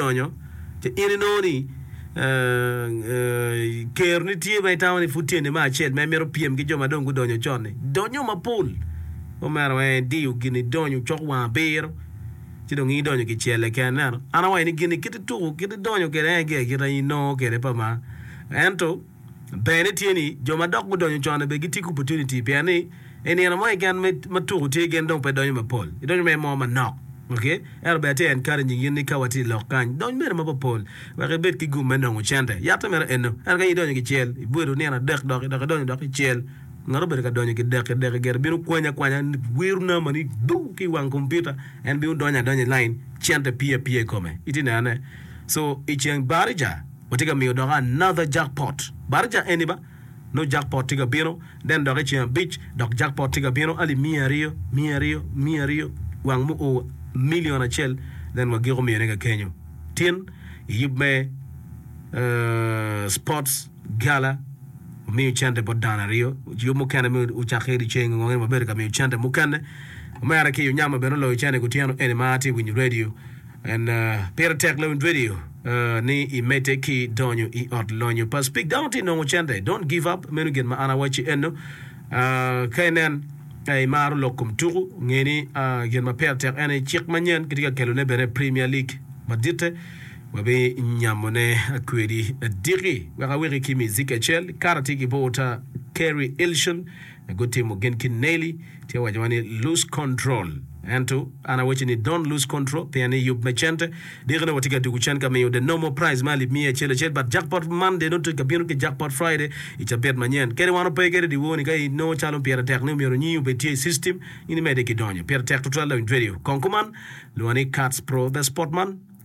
nyonyo ci in inongo ni keroni tye ma itamo ni pud tye nino acel ma imito pyem ki jo ma dong gudonyo con-ni. Donnyo mapol. Omera weng idiyo gin idonyo cok wang abiro ci dong in idonyo kicelle keken ineno. An awaco ni gin-ni kit ituko kit idonyo kwede en aye giga kit ma inongo kwede pa ma ento ber ne tye ni jo ma dok gudonyo con-ni bene gitye ki opportunity pien ni i nino mo keken ma tuko tye gin dong pe donyo mapol, gidonyo mere mo manok. Ok? Ento bene atye encouraging in ni ka watye i lok kany, dony mere ma papol wek ibed ki gum me nongo cente. Yatte mere eno. Ento ka in idonyo kicel, ibedo nino adek doki dok idonyo dok kicel, ngat obedo ka donyo kidekki dekki gire bino kwanyi akwanya, wiro namba ni duu ki i wang kompiuta, en bino donyo adonya i line, cente pye apye i kome. Itye nenone? So, i ceng Barija, Watye ka miyo dok another jackpot. Barca eni ba, nongo jackpot tye ka bino, then dok i ceng abic dok jackpot tye ka bino, ali miya aryo, miya aryo, miya aryo, wang mu o million acel, then wa giko miyone kakenyo. Tin i yub me sports gala wamiyo cente bot dano aryo, yub mukene me ocak ki liceng ongo eni wabedo ka miyo cente mukene. Omera ki Onyama bene oloyo cene kutyeno eni ma atye winyo radio. En pire tek lewiny radio ni i mete ki donyo i ot lonyo pa speak dano tye nongo cente don't give up meno gin ma an awaci eno ka inen i maro lok kom tuku ngeni gin ma pire tek en i cik manyen kitye ka kelo ne bene premier league maditte wabi nyamo ne kwedi diki wek aweki ki miziki acel kara tye ki bota Kerry Ilson gutimo gin ki Neely tye wacowa ni lose control ento an awaco ni don't lose control pien ni yub me cente dikine watye ka tuku cen ka miyo the normal prize me alip miya acel acel but jackpot Monday nongo tye ka bino ki jackpot Friday i cabit manyen kadi wan wape kede dyewor ni ka inongo calo pire tek ni omyero nyingi obed tye i system in imede ki donyo pire tek tutwal loyo in tweri kong kuman lwongo ni Kats Pro the spot man